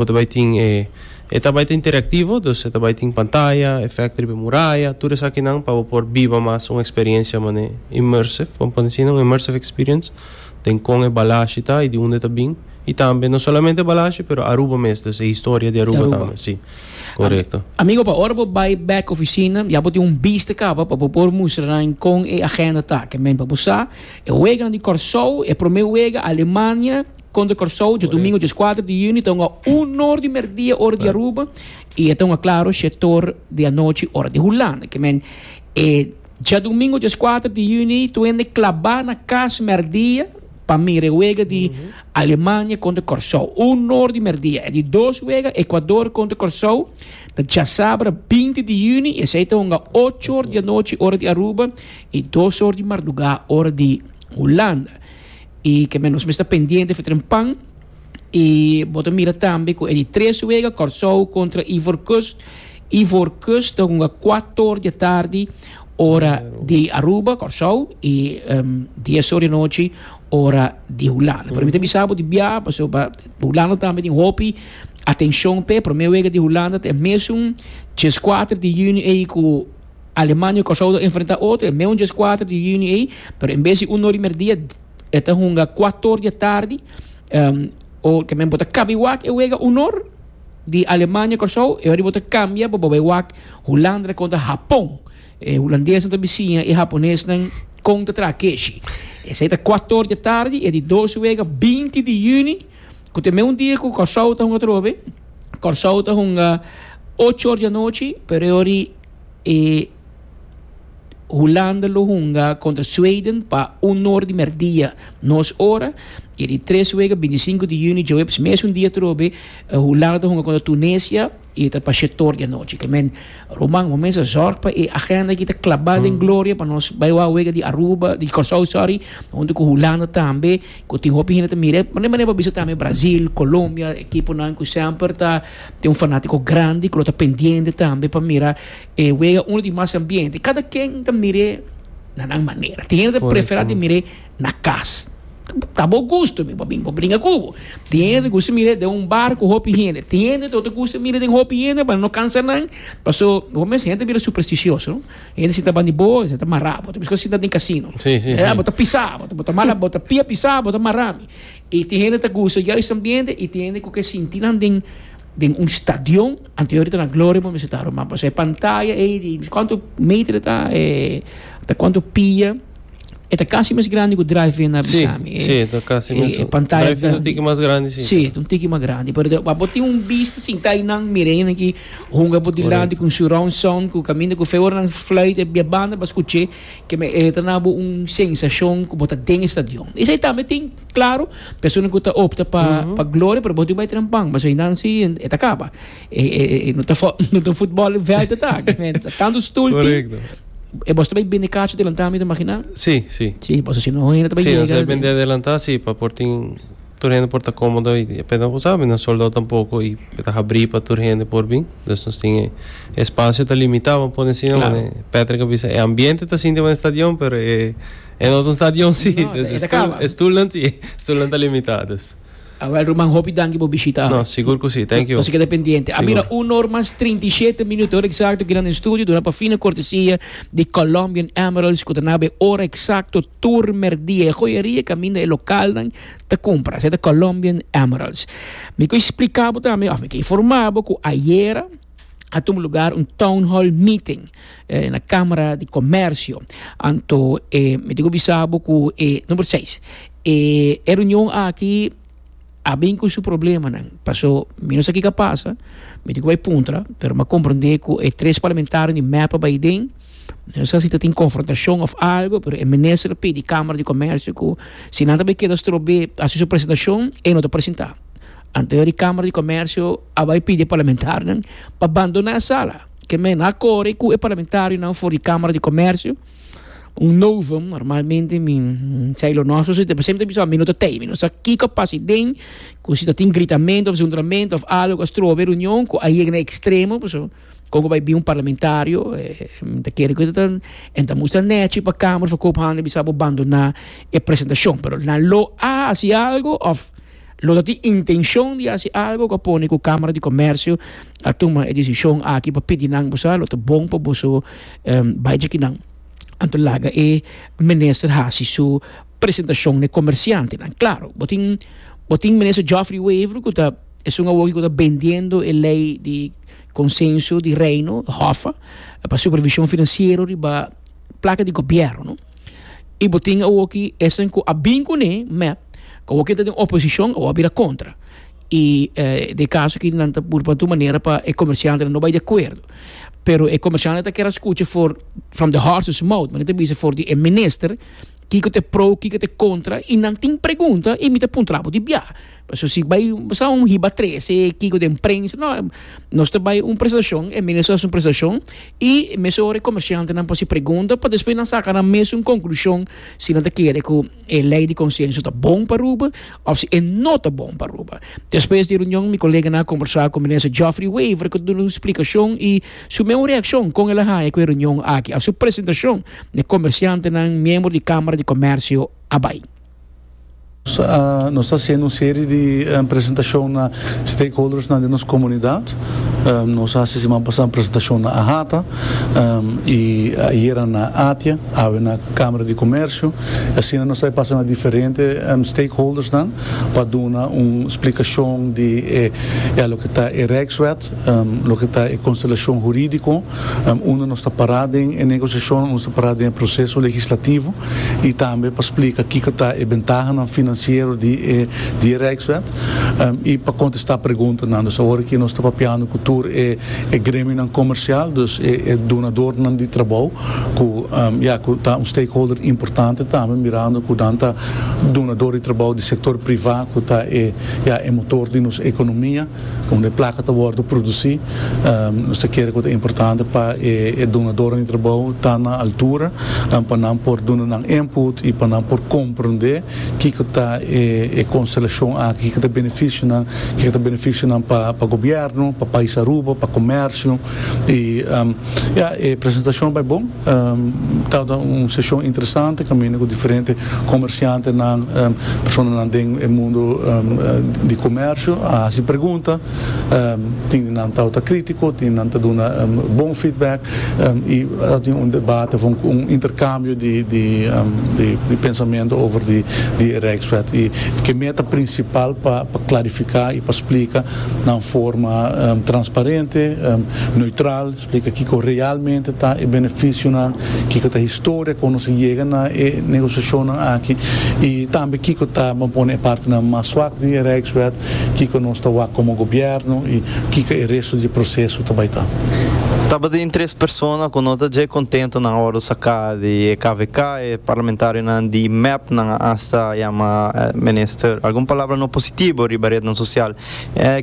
Bo ta bai tin e e ta bai ta interaktivo, dus e ta bai tin pantaya, efekto riba e muraya, tur esakinan pa bo por biba mas un eksperensha manera immersive, pon pone asina, un immersive experience den kon e balashi ta i di unda e ta bin, i tambe no solamente e balashi pero Aruba mes, dus e historia di Aruba tambe, si. Korekto. Amigo, pa ora bo bai bek ofisina ya bo tin un bista kaba pa bo por mustra nan kon e agenda ta, ke men pa bo sa, e weganan di Kòrsou, e promé wega Alemania, Conde Corsou dje domingo dje skuater di juni ta un a uno or di merdia ora di Aruba i e ta un a klaro shetor di anochi ora di Hulanda. Ke men e dje domingo dje skuater di juni ta wende klabá na kas merdia pa mira e wega di Alemania conde Corsou. Uno or di merdia. E di dos wega Ecuador conde Corsou ta djasabra binti di juni i esei ta un a ocho or di anochi ora di Aruba i dos or di mardugá ora di Hulanda. Y kende nos mester pendiente for ta den pan. Y bo ta mira tambe cu e di tres wega, Corsou contra Ivoorkust. Ivoorkust ta hunga cuator di atardi ora di Aruba, Corsou, y dies or di anochi ora di Hulanda. Pero mi ta bisa bo di bia, paso Hulanda tambe tin hopi atencion p'e. Prome wega di Hulanda ta e mesun dies cuater di juni ey cu Alemania y Curaçao ta enfrenta otro e meun djes kuater di yüni ey, pero en bes di uno di merdia e ta hunga kuator di atardi. O tambe bo ta kabi wak e wega unor di Alemania, Curaçao, e oribo ta kambia pa bo bay wak Hulandra kontra Hapon. E hulandesnan ta bisiña e haponesnan kon ta traha keshi. Esey ta kuator di atardi, e di dos wega binti di yüni ku ta e meun dia ku Curaçao ta hunga atrobe. Curaçao ta hunga ocho or di anochi, pero e ori E Hulanda lo hunga kontra Sweden pa un or di mèrdia nos ora, i di tres wega bintisinku di yuni djoweps mesun dia atrobe Hulanda ta hunga kontra Tunesia i ta pa shetor di anochi. Ke men ruman bo mes a zòrg pa e agenda aki ta klabá den gloria pa nos bai wak wega di Aruba di Kòrsou sòri huntu ku Hulanda tambe ku tin hopi hende ta mira e. Manera manera bo a bisa tambe Brazil, Colombia, ekiponan ku semper ta. Tin un fanatico grandi cu lo ta pendiente tambe pa mira e wega uno di mas ambiente. Cada ken ta mir'e na nan manera. Tin hende ta prefera di mir'e na cas. Ta bo gusto, mi bo bin bo bringa cu bo. Tin hende ta gusto mir'e den un bar cu hopi hende. Tin hende ta gusto mir'e den hopi hende pa no cansa nan. Paso, bo mes hende ta bira supersticioso. Hende sinta banda di bo e ta mara bo. Ta bisti sinta den casino. Bo ta pisa, bo ta mara, bo ta pia pisa, bo ta mara mi. Y tin hende ta gusta juist e ambiente y tin hende cu ke sinti nan den den un stadion, anterior e ta na Gloria bo mester ta Romana pasobra e pantaya ey di miss cuanto meter e ta e ta cuanto pia e ta casi mes grandi cu drive in na bisa mi e si ta casi mes e pantaya drive in ta un tiki mas grandi si si ta un tiki mas grandi pero den abo tin un bista sinta ey nan mira ey nan aki hunga bo dilanti cu un surround sound cu caminda cu fe ora nan fluit e banda bo a scuche Ke me e trana bo un sensashon ku bo ta den e stadion. Esei tambe tin, klaru, persona ku ta opta pa pa gloria, pero bo tin bai tran pan, pasobra esnan si e ta kaba. E e e no ta fo no ta un futbolveld ta ta aki, me ta tantu stul tin. Korekto. E boso ta bai bende kachi adelantá mi ta imaginá? Si, si. Si, boso si no hende ta bai yega den. Si, boso bai bende adelantá si pa por tin. Tur hende por ta komodo i e peda bo sabe nos soldao tampoko i e ta habrí pa tur hende por bin dus nos tin e espasio ta limitá bo a pone asina wande Patrick a bisa e ambiente ta sinti wande stadion pero e e no ta un stadion si dus e stul e stulnan si e stulnan ta limitá dus. A wel ruman hopi danki bo bishita ame. No sigur ku si thank you. Nos a keda pendiente. A mira un or mas trinta i shete minuto ora eksakto kina den studio duna pa fina kortesia di Colombian Emeralds ku ta na bo e ora eksakto. Tur merdia e joyeria kaminda e lokalnan ta kumpra, esei ta Colombian Emeralds. Mi ke splika bo tambe, òf mi ke informá bo ku ayera a tuma lugar un town hall meeting na Kamara di Komersio. Anto mi diku bisa bo ku e, number seis, e reunion aki, a bin cu su problemanan paso mi no sa kico a pasa mi tin cu bay puntra pero mi a comprende cu e tres parlamentario di mep a bay den mi no sa si ta tin confrontacion of algo pero e minister a pidi camara di comercio cu si nan ta bay keda strobe hasi su presentacion e no ta presenta anto di camara di comercio a bay pidi e parlamentarionan pa bandona e sala keme no a core cu e parlamentarionan for di camara di comercio un novo normalmente mi sai lo nos so te por sempre bisa mi no ta tei mi no sa kiko pasi den ku si ta tin gritamento of zundramento of algo a strobe reunion ku a yega na ekstremo paso kon ku bai bin un parlamentario mi ta kere ku ta en ta musta nèchi pa kamer of a kop hande bisa bo bandona e presentashon pero nan lo a hasi algo of Lo ta tin intencion di haci algo cu a pone cu Camara di Comercio a tuma e decision aki pa pidi nan bo sa, lo ta bon pa boso bai djiki nan. Anto laga e Minister haci su presentacion na e comerciantenan. Claro, bo tin, bo tin Minister Geoffrey Wever cu ta, esun awoki cu ta bendiendo e ley di Consenso di Reino, HOFA, pa supervision financiero riba placa di Gobierno. Y bo tin awoki esnan cu a bin cu ne mep, cu awoki ta den oposicion, awor a bira contra. Y den e caso aki nan ta busca tur manera pa e comerciantenan no bay di acuerdo. Pero e comerciantenan ta kier a scucha for from the horses mouth, manera nan ta bisa for di e minister, kico ta e pro, kico ta e contra, y nan tin pregunta y mi ta puntra bo di bia. Pasobra si bay sa un hiba trece kico den prensa, nos ta bay un presentacion, e minister ta haci un presentacion. I mesun ora e komershantenan por si pregunta pa despues nan saka nan mes un konklushon si nan ta kere ku e lei di konsenso ta bon pa Aruba òf si e no ta bon pa Aruba. Despues di e runion mi koleganan a kombersá ku Minister Geoffrey Wever ku ta duna un splikashon i su meu reakshon kon el a haña ku e runion aki òf su presentashon na e komershantenan miembro di Kámara di Komèrsio a bai. Nos ta haciendo un serie di presentacion na stakeholdersnan den nos comunidad. Nos haci siman pasa un presentacion na Ahata y ayera na Atia, awe na Camara di Comercio. Y asina nos ta e pasa na diferente stakeholdersnan pa duna un splicacion di e loke ta e Rijkswet, loke ta e constelacion juridico. unda nos ta pará den e negosiashon, unda nos ta pará den e proseso legislativo i tambe pa splika kiko ta e bentahanan finansiero di e di e Rijkswet i pa kontestá preguntanan. Dus awor aki nos ta papiando ku tur e e gremionan komersial, dus e e dunadornan di trabou ku ya ku ta un stakeholder importante tambe mirando ku nan ta dunador di trabou di sektor privá ku ta e ya e motor di nos ekonomia. Unda e plaka ta wòrdu produsí, nos ta kere ku ta importante pa e dunadornan di trabou ta na altura pa nan por duna nan input i pa nan por komprondé kiko ta e konstelashon aki, kiko ta e benefisio nan, kiko ta e benefisio nan pa gobièrnu, pa pais Aruba, pa komèrsio i ya e presentashon bai bon. Tabata un seshon interesante kaminda ku diferente komersiantenan, personanan den e mundu di komersio a hasi pregunta. Tin di nan tabata krítiko, tin di nan ta duna bon feedback i a bin un debate, un interkambio di pensamentu over di e Rijkswet. I ke meta prinsipal pa klarifiká i pa splika nan forma transparente, neutral. Tika kiko realmente ta e benefisionan, kiko ta e historia kon nos a yega na e negosiashonnan aki i tambe kiko ta, bo a pone e partenan mas swak di e Rijkswet, kiko nos ta wak komo gobièrnu i kiko e resto di e proseso ta bai ta. Tabatin tres persona ku no ta dje kontento nan ora saka di e kvk, e parlamentarionan di mep nan a asta yama minister algun palabra no positibo riba retnan sosial.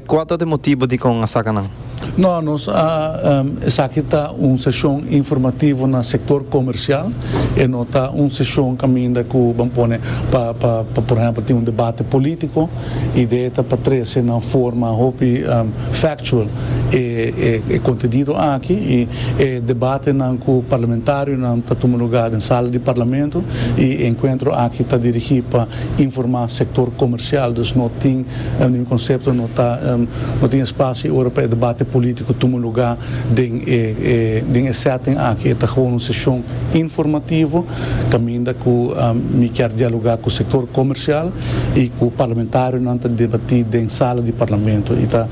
Kua ta e motibo dikon a saka nan? No, nos a esaki ta un seshon informativo na sektor komersial, e no ta un seshon kaminda ku ban pone pa pa por ehèmpel tin un debate polítiko. Idea ta pa trese na un forma hopi factual e e kontenido aki i e debatenan ku parlamentarionan ta tuma lugá den sala di parlamento i e enkuentro aki ta dirigí pa informá sektor komersial, dus no tin E mi konsepto no ta no tin espacio y ora pa e debate politico tuma luga den e den e setting aki. E ta gewoon un sesion informativo caminda cu mi kier dialoga cu sector comercial y cu parlamentarionan ta debati den sala di Parlamento y ta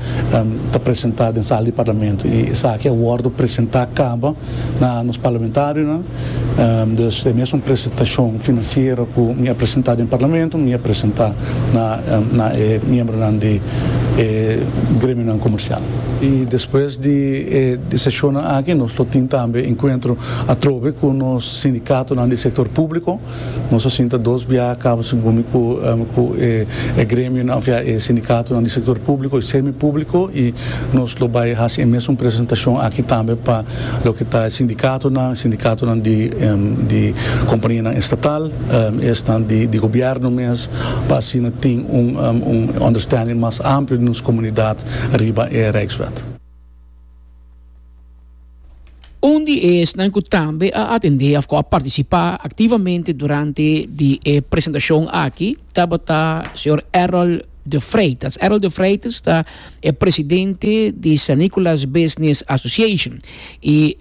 ta presenta den sala di Parlamento y esaki a wordo presenta caba na nos parlamentarionan. Dus e mesun presentashon finansiero ku mi a presentá den parlamento mi a presentá na e miembronan di e gremionan komersial. I despues di e seshonnan aki nos lo tin tambe enkuentro atrobe ku nos sindikatonan di sektor públiko. Nos a sinta dos biaha cabo segun mi cu cu e e gremionan of ya e sindicatonan di sector publico y semipublico y nos lo bay haci e mesun presentacion aki tambe pa loke ta e sindicatonan, e sindicatonan di di companianan estatal y esnan di di gobierno mes pa asina tin un un understanding mas amplio di nos comunidad riba e Rijkswet. Un di esnan cu tambe a atendé of cu a participá activamente durante di e presentacion aki tabata señor Errol de Freitas. Errol de Freitas ta e presidente di San Nicolas Business Association. Y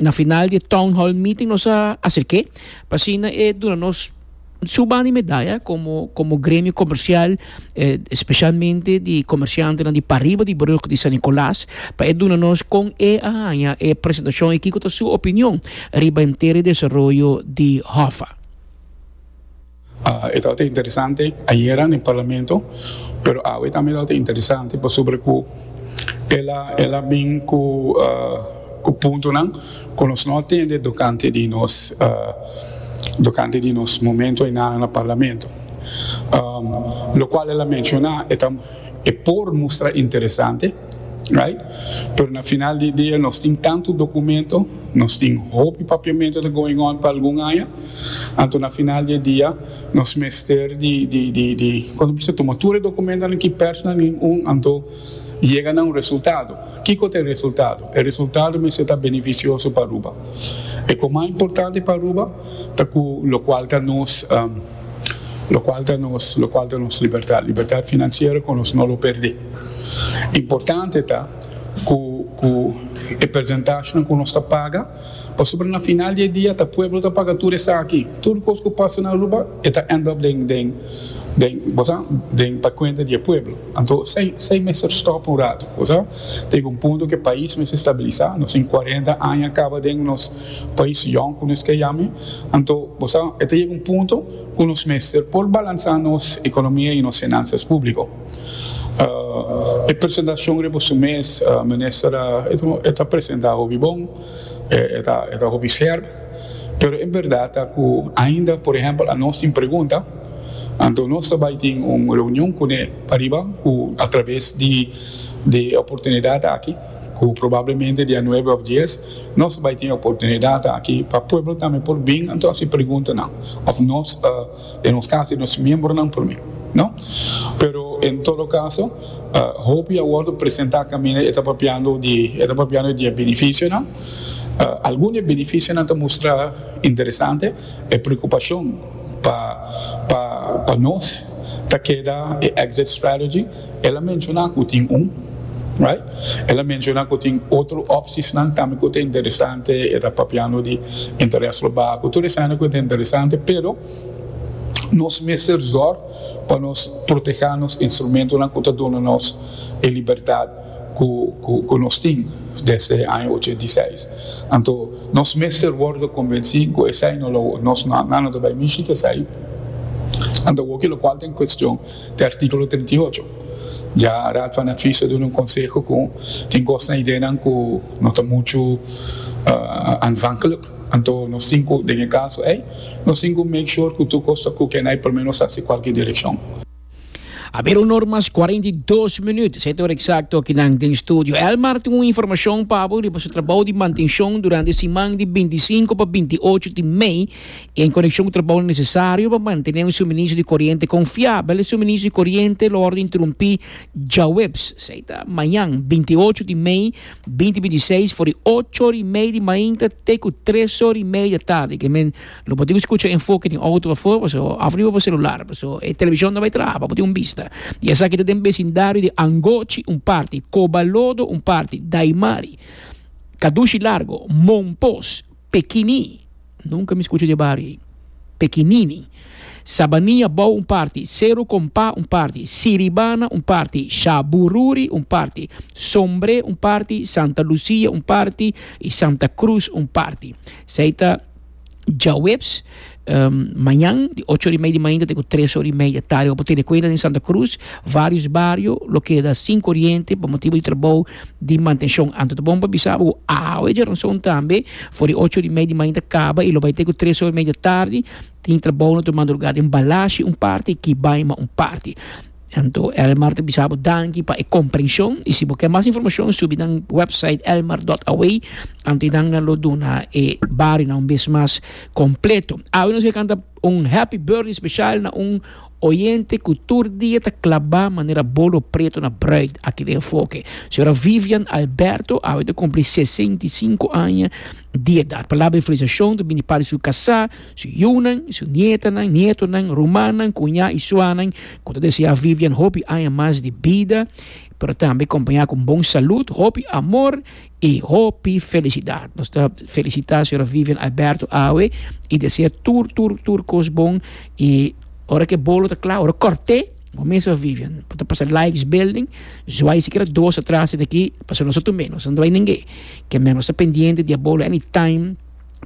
na final di e town hall meeting nos a acerc'é p'asina e duna nos Su banda y medaya como gremio comercial especialmente di comerciantenan di pariba di brug di San Nicolas pa e duna nos con e a haya e presentacion y kico ta su opinion riba e henter e desaroyo di Hoffa. E tabata interesante ayera den parlamento pero awe tambe tabata interesante pasobra cu el a bin cu. Cu puntonan cu nos no a tende tocante di nos tocante di nos momento enanan na Parlamento. Locual el a menciona e ta e por mustra interesante, right? Pero na final di dia nos tin tanto documento, nos tin hopi papiamento ta going on pa algun aña, anto na final di e dia nos mester di di di di cuando bisa tuma tur e documentonan ki persnan nin un anto. Yega na un resultado. Kiko ta e resultado? E resultado mester ta benefisioso pa Aruba. E kon mas importante pa Aruba ta ku lokual ta nos lokual ta nos lokual ta nos libertat, libertat finansiero ku nos no lo perdé. Importante ta ku ku e persentashenan ku nos ta paga. Pasobra na final di e dia ta pueblo ta paga tur esaki. Tur kos ku pasa na Aruba e ta end up den den den bo sa den pa kuenta di e pueblo. Anto esei esei mester stop un ratu. Bo sa tega un punto ku e pais mester stabilisa. Nos tin cuarenta aña kaba den nos pais yong ku nos ke yama e. Anto bo sa e ta yega un punto ku nos mester por balansa nos ekonomia i nos finansas públiko. E presentacion riba su mes minister a e ta presenta hopi bon e ta e ta hopi scherp pero e berdad ta cu ainda por ehempel a nos tin pregunta anto nos ta bay tin un reunion cune ariba cu a traves di di e oportunidad aki cu probablemente dia nuebe of dies nos ta bay tin e oportunidad aki pa pueblo tambe por bin anto haci preguntanan of nos ta. E nos casi e nos miembronan por mi, no? Pero en todo caso, hopi a wordo presenta caminda e ta papiando di, e ta papiando di e beneficionan. Algun di e beneficionan ta mustra interesante, e preocupacion pa, pa, pa nos ta keda e exit strategy. El a menciona cu tin un, right? El a menciona cu tin otro opciesnan tambe cu ta interesante, e ta papiando di interes lo bacu, tur esana cu ta interesante, pero nos mester zorg pa nos proteha nos instrumentonan cu ta duna nos e libertad cu cu nos tin desde e aña ochenta i seis. Anto nos mester wordo convenci cu esai no lo nos no a no ta bay mishi cu esai, anto awor cu locual ta en cuestion Te artíkulo trinta i ocho. Dja Raad van Advies a duna un konseho ku tin kosnan, ideanan ku no ta muchu aanvankelijk. Anto nos tin ku, den e kaso ei, nos tin ku make sure ku tur kos ta ku kenai promé nos hasi kualke direkshon. Haber un or mas kuarenta i dos minüt. Sete or eksakto aki nan den studio. Elmar tin un informashon pa bo riba su trabou di mantenshon durante siman di binti i sinku pa binti i ocho di mei. En konekshon ku trabou nesesario pa mantené un suministro di koriente konfiabel, e suministro di koriente lo wòrdu interumpí djaweps, esei ta mañan binti i ocho di mei, binti binti i seis, for di ocho ora i media di mainta te ku tres ora i media di atardi. Ke men lo por tin ku skucha enfoke den outo pafó, paso òf riba bo selular, paso e televishon ta bai traha pa bo tin un bista. I esaki ta den besindario di Angochi un parti, Kobalodo un parti, Daimari, Kadushi Largo, Monpos, Pekini, Nunka mi skucha di e bario ei. Pekinini, Sabania bou un parti, Seru Kompa un parti, Siribana un parti, Shabururi un parti, Sombre un parti, Santa Lusia un parti i Santa Krus un parti. Esei ta djaweps. Um, mañan, di ocho ora i media di mainta te ku tres ora i media di tardi. Bo por tene kuenta den Santa Cruz, vários bario lo keda sin koriente pa motibu di trabou di mantenshon. Anto ta bon pa bisa bo ku awe djornasou tambe, for di ocho ora i media di mainta kaba i lo bai te ku tres ora i media di tardi, tin trabounan tur madrugá den Balashi un parti i Kibaima un parti. Anto Elmar ta bisa bo danki pa e comprension y si bo ke mas informacion subi nan website elmar.away anto y nan lo duna e barionan un bes mas completo. Awe nos ke canta un happy birthday special na un oyente cu tur dia ta claba manera bolo preto na bruid aki den enfoke. Señora Vivian Alberto awe ta cumpli sesenta y cinco aña di edad. Palabra de felicitacion ta bini di parte di su casa. Su yunan, su nietanan, nietonan, rumannan, kuñá i suanan ku ta deseá Vivian hopi aña mas di bida, pero tambe kompañá ku bon salud, hopi amor i hopi felisidat. Nos ta felisitá señora Vivian Alberto awe i deseá tur, tur, tur kos bon. I ora ku e bolo ta kla, ora kòrt'é, bo mes a Vivian por ta pasa Lights Building, zwai sikiera dos atras di aki, pasobra nos ta tumbe, nos ta dwai ningé. Ke men, nos ta pendiente di e bolo anytime.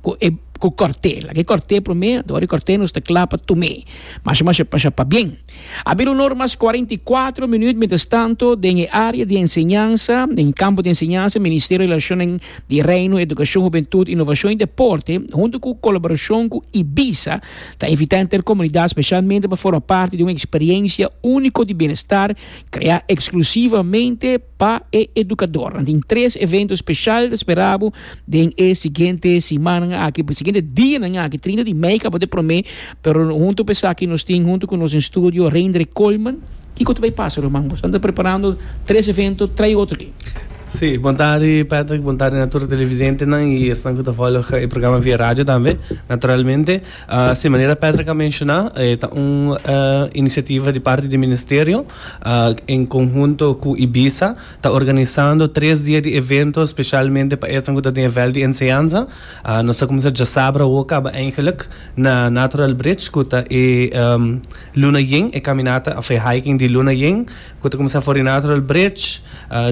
cu e cu corte laga e corte prome a dor e corte nos ta cla pa tume masha masha masha pa bien a bir un or mas cuarenta y cuatro minuut mientras tanto den e area di enseñansa den e campo di enseñansa ministerio di relacionen di reino educacion hubentud innovacion y deporte hunto cu colaboracion cu ibiza ta invita henter comunidad specialmente pa forma parti di un experiencia unico di bienestar crea exclusivamente Pa e edukadornan tin tres evento speshal ta spera bo den e siguiente simannan aki, e siguiente dianan aki, trinta di mei kaba t'e prome, pero huntu p'esaki nos tin huntu ku nos den studio Reindre Colman, kiko ta bai pasa ruman? Boso ta preparando tres evento trai otro ke? Sí, bon tarde Patrick, bon tarde na tur televidentenan i esnan ku ta volg e programa via radio tambe, naturalmente. Si manera Patrick a menshona, e ta un inisiativa di parti di Ministerio. en conhunto cu Ibiza ta organisando tres dia di evento specialmente pa esnan cu ta den vel di enseñanza. Nos ta cuminsa djasabra awo caba eigenlijk na Natural Bridge cu ta e luna yen, e caminata of e hiking di luna yen cu ta cuminsa for di Natural Bridge.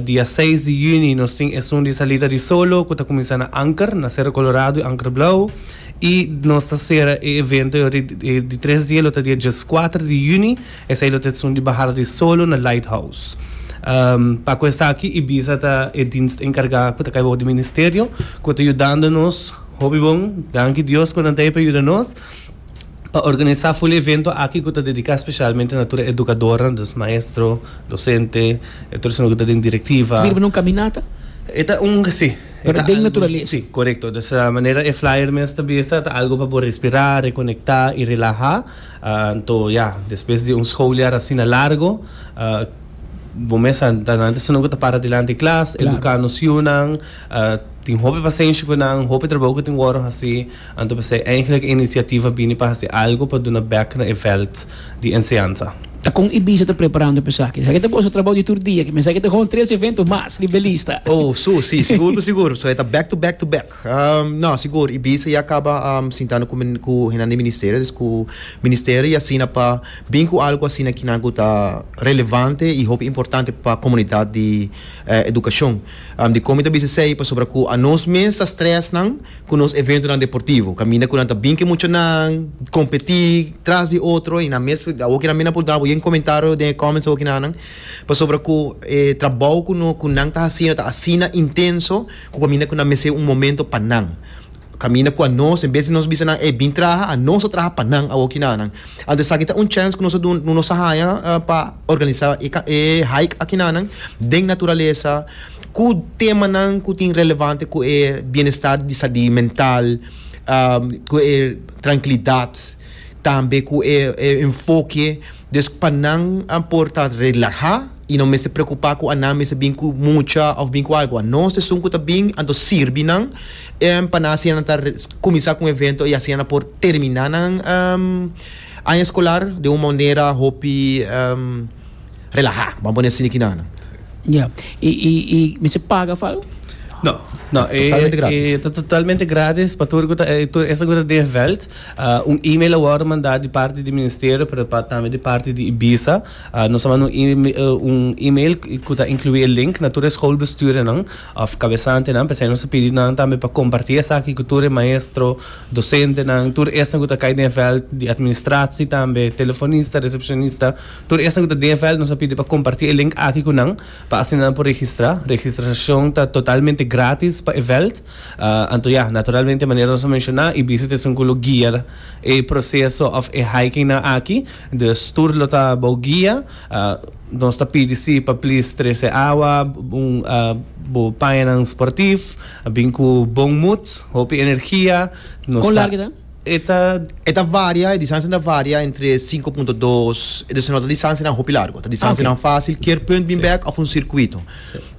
Dia seis di juni nos tin esun di salida di solo cu ta cuminsa na Anker, na Cerro Colorado y Anker Blauw y nos ta cera e evento di tres dia lo ta dia dieskuater di juni. Esei lo ta esun di bahada di solo na Lighthouse. Pa cu esaki Ibiza ta e dienst encarga cu ta cay bobo di Ministerio cu ta yudando nos hopi bon. Danki Dios cu nan ta hepe yuda nos pa organisa ful evento aki cu ta dedica specialmente na tur e educadornan, dus maestro, docente, e tur esnan cu ta den directiva. Bira pa un caminata? E ta un, si, e ta algo, si, corecto. Dus manera e flyer mes ta bisa ta algo pa bo respira, reconecta y relaha. Anto ya, despues di un schooljaar asina largo, bo mes a ta nan esun nan ku ta para dilanti klas, eduka nos yunan, tin hopi pasenshi ku nan, hopi trabou ku tin wòrdu hasi. Anto p'esei eingelijk e inisiativa bini pa hasi algu pa duna bèk na e vèlt di enseansa. Ta kon Ibiza ta preparando p'esaki? Esaki ta boso trabou di tur dia, ki mester esaki ta hon tres eventu mas, Libelista. Oh, su, si, sigur ku sigur. So e ta bèk tu bèk tu bèk. No, sigur. Ibiza ya caba sintando cu hende di Ministerio, dus cu Ministerio y asina pa bin cu algo asina kinan cu ta relevante y hopi importante pa comunidad di educacion. Di con mi ta bisa esey? Pasobra cu a nos mes ta stress nan cu nos eventonan deportivo. Caminda cu nan ta bin cu e muchanan, competi tras di otro y nan mes, awor kinan mi nan por duna yen comentario den e comments awor kinanan, pasobra cu e trabou cu nan ta haciendo ta asina intenso. Ku kaminda ku nan mester un momento pa nan. Kaminda ku anos, en bes di nos bisa nan ey bin traha, anos a traha pa nan awoki na nan. Anto esaki ta un chèns ku nos ta duna, ku nos ta haña pa organisá e hike aki na nan den naturalesa, ku temanan ku tin relevante ku e bienestar di sa di mental, ku e trankilidat, tambe ku e enfoke Dus pa nan a por ta relahá i no mester preokupá ku anan mester bin ku mucha òf bin ku algu. Anó sesun ku ta bin anto sirbi nan en pa nan asina nan ta kuminsá ku un evento i asina nan por terminá nan aña eskolar den un manera hopi relahá, bo a pone asina ki nan. Ya. I i mester paga pa algu? No, no. E ta totalmente grátis pa tur ku ta tur esnan ku ta den vèlt. Un email a wòrdu mandá di parti di Ministerio pero tambe di parti di Ibiza. Nos a manda un email ku ta inkluí e link na tur e schoolbestuurdernan òf kabesantenan. P'esei nos a pidi nan tambe pa kompartí esaki ku tur e maestro, dosentenan, tur esnan ku ta kai den e vèlt di administratie tambe, telefonista, resepshonista, tur esnan ku ta den e vèlt nos a pidi pa kompartí e link aki ku nan pa asina nan por registrá. Registrashon ta totalmente grátis pa e vèlt. Anto ya, naturalmente manera nos a menciona e bisit es un cu lo guia e proceso of e hikingnan aki, dus tur lo ta bou guia. Nos ta pidi si pa please trece awa, bo pañanan sportief, bin cu bon moed, hopi energia. Con largo ta? E ta. E ta varia, e distancianan ta varia entre sinku punto dos, dus no ta distancianan hopi largo, ta distancianan facil kier punt bin bek of un circuito.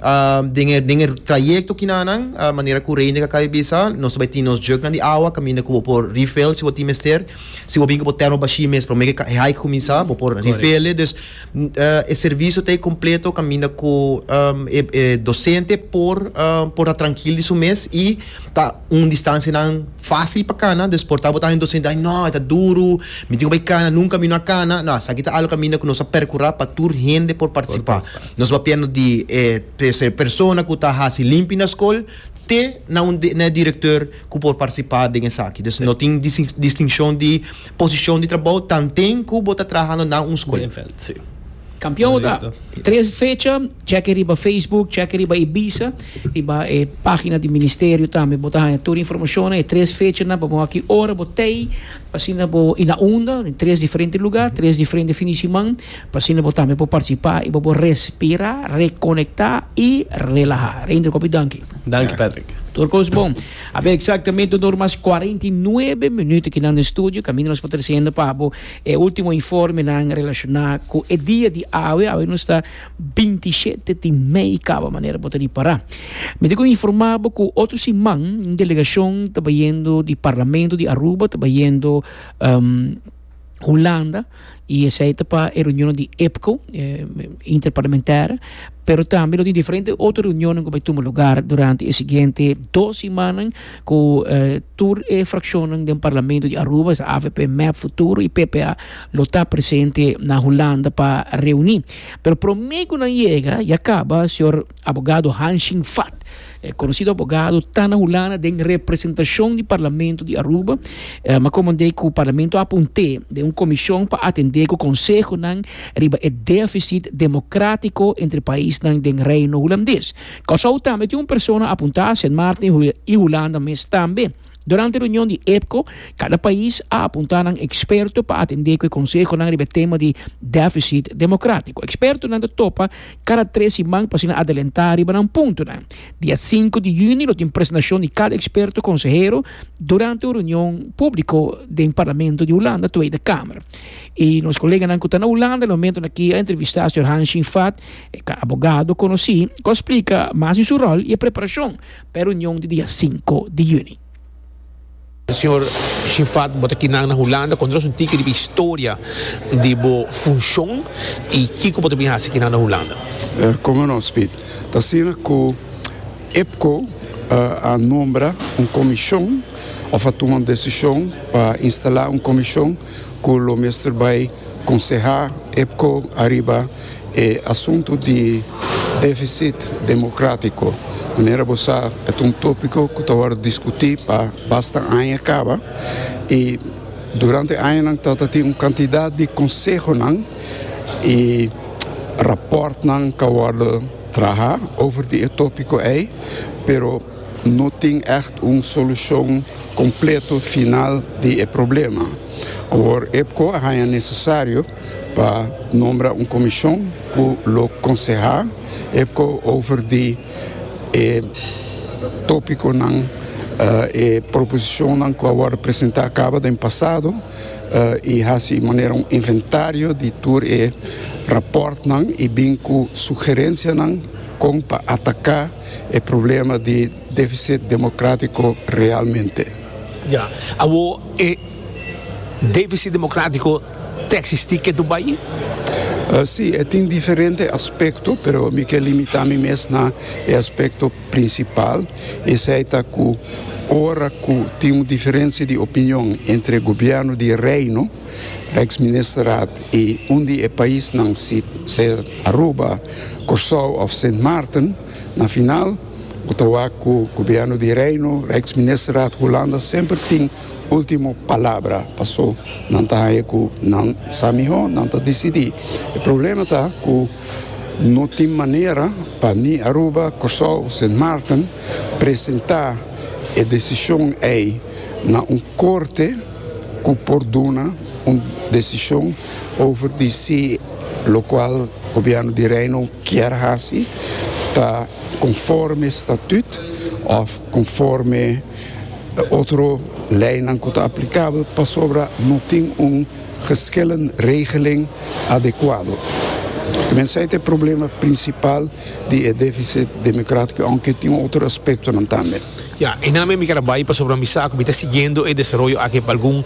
Uh, den e, den e trayecto kina nan, uh, manera ku Reine ka kai bisa, nos bai tin nos jugnan di awa, kaminda ku bo por refill si bo tin mester. Si bo bin ku bo termo bashi mes, prome ke e hike kuminsá, bo por refill e. Dus, uh, e servisio ta e kompleto kaminda ku, um, e, e dosente por, uh, por ta trankil di su mes i ta un distansianan fásil pa kana. Dus por ta bo ta den dosente, ai nò, e ta duru, mi tin ku bai kana, nunka mi no a kana. Nò, esaki ta algu kaminda ku nos a perkurá pa tur hende por partisipá. Nos papiando di e p'e persona ku ta hasi limpi na skol te na un na e direktor ku por partisipá den esaki. Dus no tin distinshon di posishon di trabou tanten ku bo ta trahando na un skol. Binnenveld, si. Kampion bo ta. Tres fecha, chèke riba Facebook, chèke riba e bisa, riba e página di ministerio tambe bo ta haña tur e informashonnan. E tres fechanan pa bo aki ora bo tei asina bo i na unda den tres diferente lugá, tres diferente fin di siman. Pasinda bo tambe por partisipá i bo por respirá, rekonektá i relahá. Reindra kopi danki. Danki Patrick. Tur kos bon. A ber eksaktamente un or mas kuarenta i nuebe minuut aki nan den studio. Kaminda nos por trasenda pa bo e último informenan relashoná ku e dia di awe. Awe nos ta binti i shete di mei kaba manera bo ta di pará. Mi tin ku informá bo ku otro siman un delegashon ta bayendo di Parlamento di Aruba ta bayendo. Hulanda y esey ta pa e reunionan di EPCO, eh, Interparlamentaire, pero tambe lo tin diferente otro reunionan cu bay tuma lugar durante e siguiente dos simanan cu eh, tur e fraccionan den Parlamento di Aruba, es AVP, MEP, Futuro y PPA, lo ta presente na Hulanda pa reuni. Pero prome cu nan yega, ya caba, señor Abogado Han Shing Fat, e konosido abogado, ta na Hulanda den representashon di Parlamento di Aruba. E a komand'é ku Parlamento a punt'é den un komishon pa atendé ku konsehonan riba e defisit demokratiko entre paisnan den Reino Hulandes. Kòrsou tambe tin un persona a puntá, Sint Maarten i Hulanda mes tambe. Durante reunion di EPCO, cada pais a apunta nan experto pa atende cu e consehonan riba e tema di deficit democratico. Expertonan ta topa cada tres siman pa asina adelenta riba nan puntonan. Dia sinku di juni lo tin presentacion di cada experto consehero durante un reunion publico den Parlamento di Hulanda, Tweede Kamer. Y nos coleganan cu ta na Hulanda e momento aki a entrevista señor Hanshin Fat, e abogado conoci, cu a splica mas di su rol y e preparacion. P'e reunion di dia sinku di yüni. Señor Shifat, bo ta aquí nan na Hulanda. Konta nos un tiki riba e historia di bo funshon i kiko bo ta bini hasi aquí nan na Hulanda? Kòmò no, Speed. Ta asina ku EPCO a nombra un komishon, òf a tuma un desishon pa instalá un komishon ku lo mester bai Konsehá EPCO ariba e asuntu di défisit demokratiko. Manera bo sa, e ta un tópiko ku ta wòrdu diskutí pa basta aña kaba, i durante añanan ta ta tin un kantidat di konsehonan i rapòrtnan ku a wòrdu trahá over di e tópiko ei, pero no tin ègt un solushon kompleto final di e problema. Awor EPCO a haña nesesario pa nombra un komishon ku lo konsehá EPCO over di e tópikonan, e proposishonnan ku a wòrdu presentá kaba den pasado i hasi manera un inventario di tur e rapòrtnan i bin ku sugerensianan kon pa ataká e problema di Deficit democratico realmente. Ya. Awor e deficit democratico ta existi ke tubai? Si, e tin diferente aspecto, pero mi ke limita mi mes na e aspecto principal, esei ta cu ora cu tin un diferencia di opinion entre gobierno di Reino, Rijksministerraad, y un di e paisnan, si ser Aruba, Corsou of Sint Maarten, na final, ku ta wak ku Gobièrnu di Reino, Rijksministerraad, Hulanda semper tin último palabra. Pasó nan ta haña ku nan sa mihó, nan ta disidí. E problema ta ku no tin manera pa ni Aruba, Kòrsou òf Sint Maarten presentá e desishon ei na un korte ku por duna un desishon over di si lokual Gobièrnu di Reino, kier hasi ta konforme statut òf konforme otro leinan ku ta aplikabel pasobra no tin un geschillen regeling adekuado. Mensei ta e problema prinsipal di e defisit demokratiko, ounke tin otro aspektonan tambe. Ya, enan mi keda bai pasobra mi sa ku mi ta siguiendo e desaroyo aki pa algun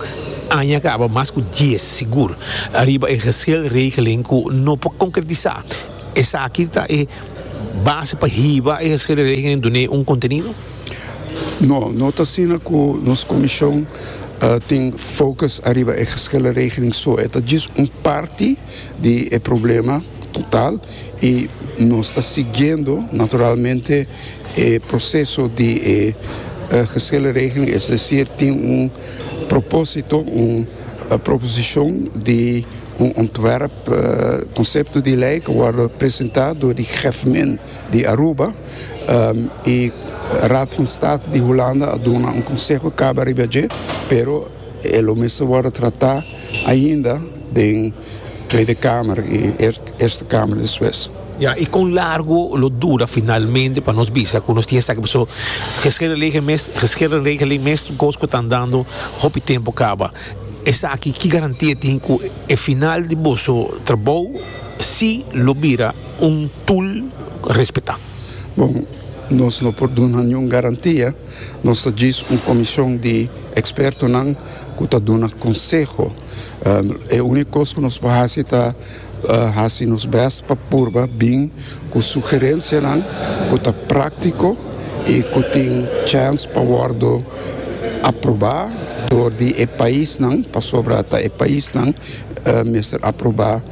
aña kaba, mas ku dies sigur, ariba e geselregeling ku no por konkretisá. Esaki ta e base pa hiba e geselregeling dun'é un kontenido? No, no ta asina ku nos komishon tin fokus ariba e geselregeling so. E ta djis un parti. di e problema total y nos ta siguiendo naturalmente e proceso di e gehele regeling, es decir tin un proposito, un proposicion di un ontwerp concepto di ley cu wordo presenta door di Gevmin di Aruba y Raad van State di Hulanda a duna un conseho caba riba dje pero e lo mes ta wordo trata ainda. Den Tweede Kamer i Eerste Kamer despues. Ya, i kon largo lo dura finalmente pa nos bisa ku nos tin esaki paso regeringregeling mes tin kos ku ta andando hopi tempu kaba. Esaki ki garantia tin ku e final di boso trabou si lo bira un tul respetá? Bon, nos no por duna niun garantia. Nos ta djis un komishon di ekspertonan ku ta duna konseho. E único cos cu nos por haci ta haci nos best pa purba bin cu sugerencianan cu ta practico y cu tin chance pa wordo aproba door di e paisnan, pasobra ta e paisnan mester aproba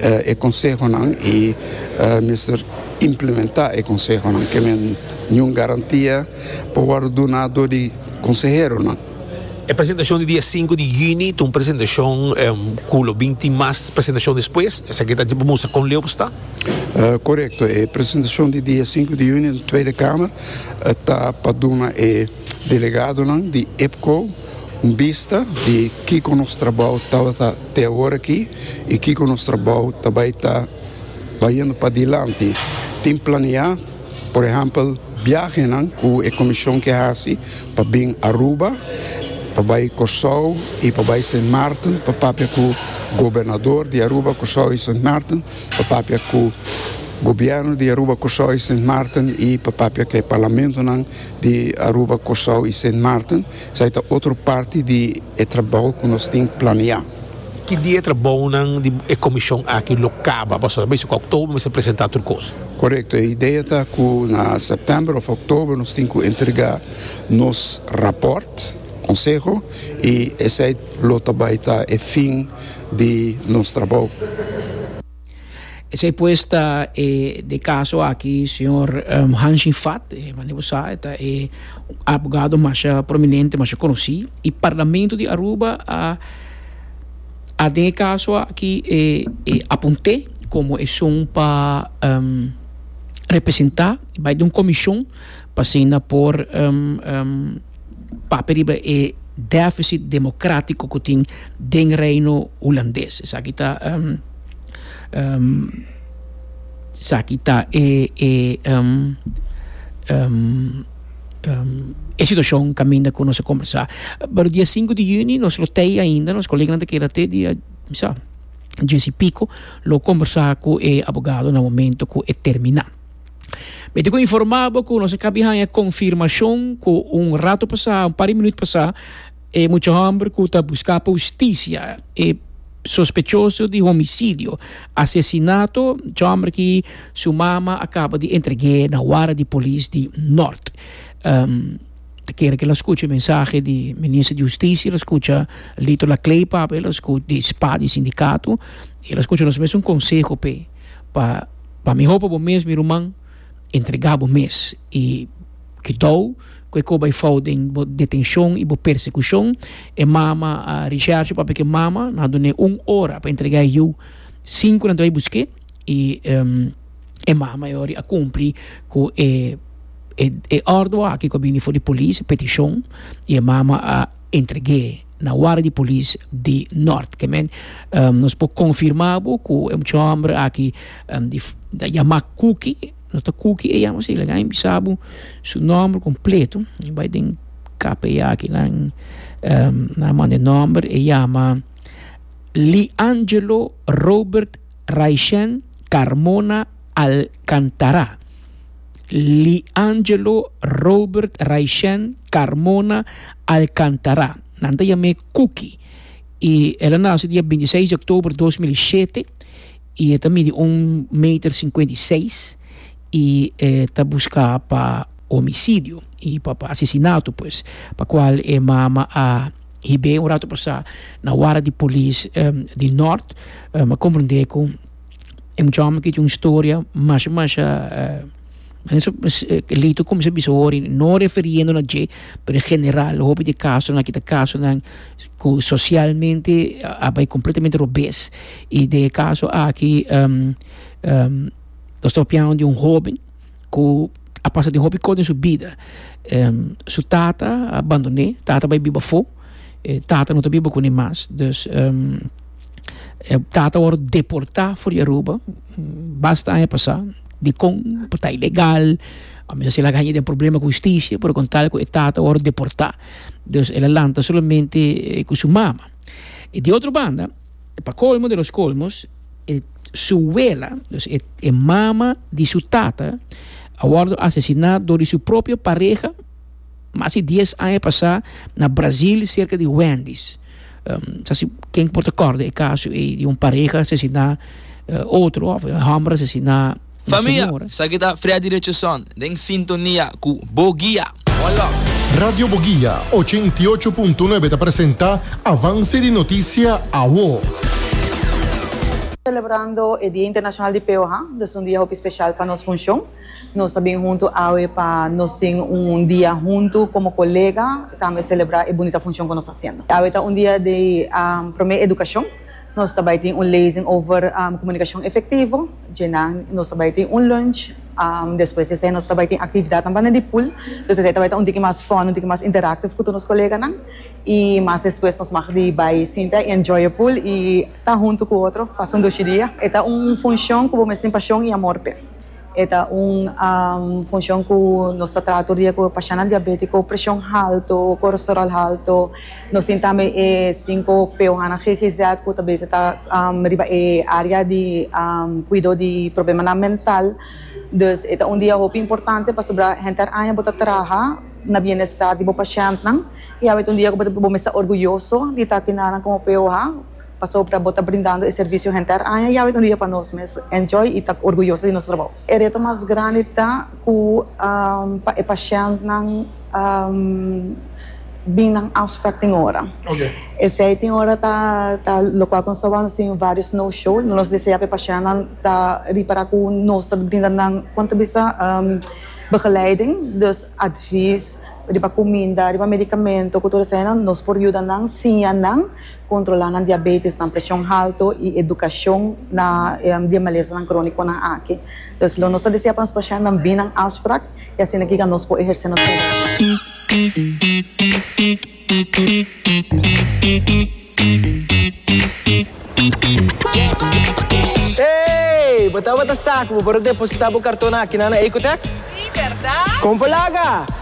e consehonan y mester implementa e consehonan. Ke men niun garantia por wordo duna door di conseheronan. E presentashon di dia sinku di yüni ta un presentashon ku lo bin tin mas presentashon despues. Esaki ta pa mustra kon leu bo sta. Korekto, e presentashon di dia sinku di yüni den Tweede Kamer ta pa duna e delegadonan di EPCO un bista di kiko nos trabou tabata te awor aki i kiko nos trabou ta bai ta bayendo padilanti. Tin planeá. Por ehèmpel, biahenan ku e komishon ke hasi pa bin Aruba, pa bai Kòrsou i pa bai Sint Maarten pa papia ku gobernador di Aruba, Kòrsou i Sint Maarten, pa papia ku gobièrnu di Aruba, Kòrsou i Sint Maarten i pa papia ku e parlamentonan di Aruba, Kòrsou i Sint Maarten, esei ta otro parti di e trabou ku nos tin planeá. Ki dia e trabounan di e komishon aki lo kaba? Pasobra a bisa ku Oktober mester presentá tur kos. Korekto, e idea ta ku na Sèptèmber òf Oktober nos tin ku entregá nos rapòrt, konseho, i esei lo ta bai ta e fin di nos trabou. Esei pues ta e de kaso aki señor Hanshin Fat, mane bo sa e ta e abogado masha prominente, masha konosí, i parlamento di Aruba a a den e kaso aki e e apunt'é komo esun pa representá, bai den un komishon. pa asina por papia riba e défisit demokratiko ku tin den Reino Hulandes. Esaki ta esaki ta e e e situashon kaminda ku nos a kombersá. Pero dia sinku di yüni nos lo tei ainda, nos koleganan ta keda te dia bisa dies i piko lo kombersá ku e abogadonan momento ku e terminá. Mi tin ku informá bo ku nos a kabi haña konfirmashon ku un ratu pasá, un par di minut pasá, e mucha hòmber ku ta buská pa hustisia, e sospechoso di homisidio, asesinato, mucha hòmber ki su mama a kaba di entreg'é na wara di polis di Nort. Ta kere ke lo skucha e mensahe di Minister di Hustisia, lo skucha Lito Lakleipa, lo skucha di spa di sindikato i lo skucha nos mes un konseho p'e. pa pa miho pa bo mes mi ruman entrega bo mes y kidou cu e coba e fout den bo detencion y bo persecucion e mama a rechazo e papia ke mama no a duna e un ora pa entrega e yu cinco nan ta bay buske y e mama e ora a cumpli cu e e ordo aki cu a bini for di police peticion y e mama a entrege. na wara di polis di Nort kemen nos por konfirma bo ku e mucha homber aki ta yama Kuki no ta Kuki e yama si laga mi bisa bo su nomber kompleto mi bai den KPI aki nan nan manda e nomber e yama Liangelo Robert Raishen Carmona Alcantara. Liangelo, Robert, Raishen, Carmona, Alcantara. Nan ta yam'é Cookie. I el a nase dia binti seis di oktober dos mil i shete i e ta midi un meter sinkuenta i seis i e ta buskà pa homisidio i pa pa asesinato pues, pa kual e mama a hib'é un ratu pasá na wara di polis di Nort, mi a komprendé ku. E mucha homi kiti un storia masha masha Lito kuminsha a bisa wor, no refiriendo na dje, pero en general hopi di e kasonan akí ta kasonan ku sosialmente a bai kompletamente robes. I den e kaso aki nos ta papia di un hóben. ku a pasa den hopi kos den su bida. Su tata a bandoné, tata bai biba afó, e tata no ta biba kuné mas. Dus, e tata a wòrdu deportá for di Aruba basta aña pasá. Dikon? Por ta ilegal, a mester asina a haña den problema ku hustisia, pero kon tal ku e tata a wòrdu deportá, dus el a lanta solamente ku su mama. I di otro banda. Pa colmo de los colmos e su wela, dus e e mama di su tata, a wordo asesina door di su propio pareha mas di dies aña pasa na Brasil cerca di Wendys. Sa si ken por ta corda e caso ey di un pareha asesina otro of homber asesina. Famia, esaki ta Freddy Richardson den sintonia cu Bo Guia. One love. Radio Boguia ochenta i ocho punto nuebe ta presenta Avance di Noticia Awo. Celebrando e Dia Internacional di Peoha, nos un dia hopi special pa nos funcion. Nos a bin huntu awe pa nos tin un dia huntu como colega y tambe celebra e bunita funcion cu nos ta haciendo. Awe ta un dia di prome educacion. Nos ta bai tin un lezing over komunikashon efektivo, dje nan nos ta bai tin un lunch, despues di esei nos ta bai tin aktividatnan banda di pool, dus esei ta bai ta un tiki mas fòn, un tiki mas interaktiv ku tur nos koleganan i mas despues nos mag di bai sinta i enjoy e pool i ta huntu ku otro, pasa un dushi dia. E ta un funshon ku bo mes tin pashon i amor p'e. E ta un funshon ku nos ta traha tur dia ku pashannan diabétiko, preshon haltu, kolesteròl haltu. Nos tin tambe e sinku p ohanan GGZ ku ta bese ta riba e área di kuido di problemanan mental. Dus e ta un dia hopi importante pasobra henter aña bo ta traha na bienestar di bo pashèntnan i awor e ta un dia ku bo mester ta orguyoso di ta kina nan komo p oha. pasobra bo ta brindando e servisio henter aña yawe un dia pa nos mes enjoy y ta orguyoso di nos trabou. E reto mas grandi ta cu pa e pashentnan bin nan afsprak tin ora. Esey tin ora ta locual cu nos ta wak sin varios no show. Nos desea pa e pashentnan ta ripara cu nos ta brinda nan con ta bisa begeleiding, dus advies riba cuminda, riba medicamento cu tur eseynan nos por yuda nan, siña nan. kontrolá nan diabétes, nan preshon haltu i edukashon na di e malesanan krónikonan aki. Entonces, lo nos ta desea pa nos pashentenan bini na un afsprak i asina kica nos por ehersé nos Hey! Bo tabata sa cu bo por a depositá bo carton aki na nan Ecotec? Sí, berdad! Con bo laga?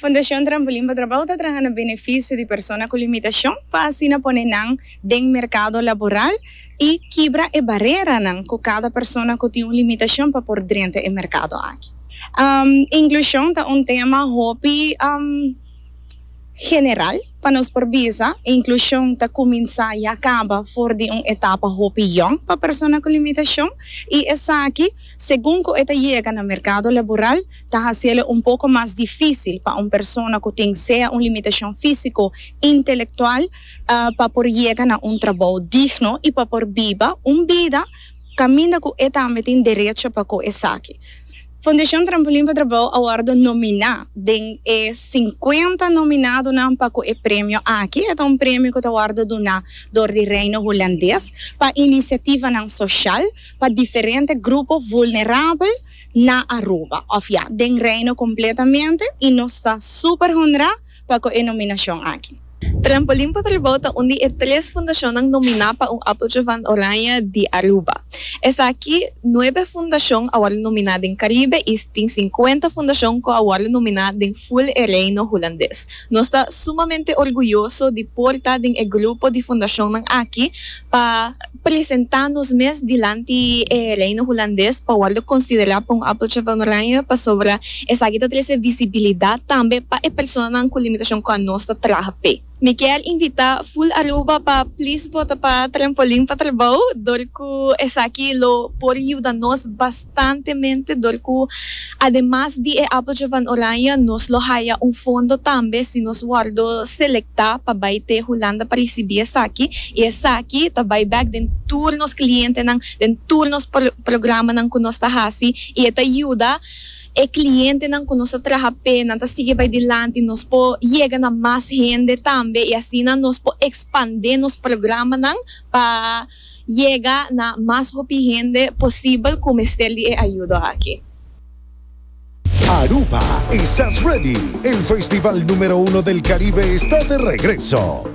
Fundashon Trampolin pa Trabou ta traha na benefisio di persona ku limitashon pa asina pone nan den merkado laboral i kibra e bareranan ku kada persona ku tin un limitashon pa por drenta e merkado aki. Inklushon ta un tema hopi general. Pa nos por bisa, e inklushon ta kuminsá ya kaba for di un etapa hopi yòn pa persona ku limitashon, i esaki, segun ku e ta yega na merkado laboral, ta hasiélo un poko mas difísil pa un persona ku tin sea un limitashon físiko, intelektual, pa por yega na un trabou digno i pa por biba un bida kaminda ku e tambe tin derecho pa ku esaki. Fundacion Trampolin pa Trabao a wordo nomina den e sinkuenta nominadonan pa cu e premio aki. E ta un premio cu ta wordo duna door di Reino Hulandes pa iniciativanan social pa diferente grupo vulnerabel na Aruba, of ya, den Reino completamente, y nos ta super honra pa cu e nominacion aki. Trampolin pa Tribou ta un di e tres fundashonnan nominá pa un Appeltje van Oranje di Aruba. Esaki, nuebe fundashon a wòrdu nominá den Karibe i tin sinkuenta fundashon ku a wòrdu nominá den ful e Reino Hulandes. Nos ta sumamente orguyoso di por ta den e grupo di fundashonnan aki pa. presentá nos mes dilanti e Reino Hulandes pa wòrdu konsiderá pa un Appeltje van Oranje pasobra esaki ta trese visibilidat tambe pa e personanan ku limitashon ku anos ta traha p'e. Mi kier invitá Full Aruba pa plis vota pa Trampolin pa Trabou dor ku esaki lo por yuda nos bastantemente dor ku. Ademas di e Appeltje van Oranje nos lo haya un fondo tambe si nos wòrdu selektá pa bai te Hulanda pa risibí esaki i esaki ta bai bèk den tur nos klientenan, den tur nos programanan ku nos ta hasi i e ta yuda e klientenan ku nos ta traha p'e nan ta sigui bai dilanti, nos por yega na mas hende tambe i asina nos por ekspandé nos programanan pa. yega na mas hopi hende posibel ku mester di e ayudo aki. Aruba, Esas Ready? El festival numero uno del Caribe está de regreso!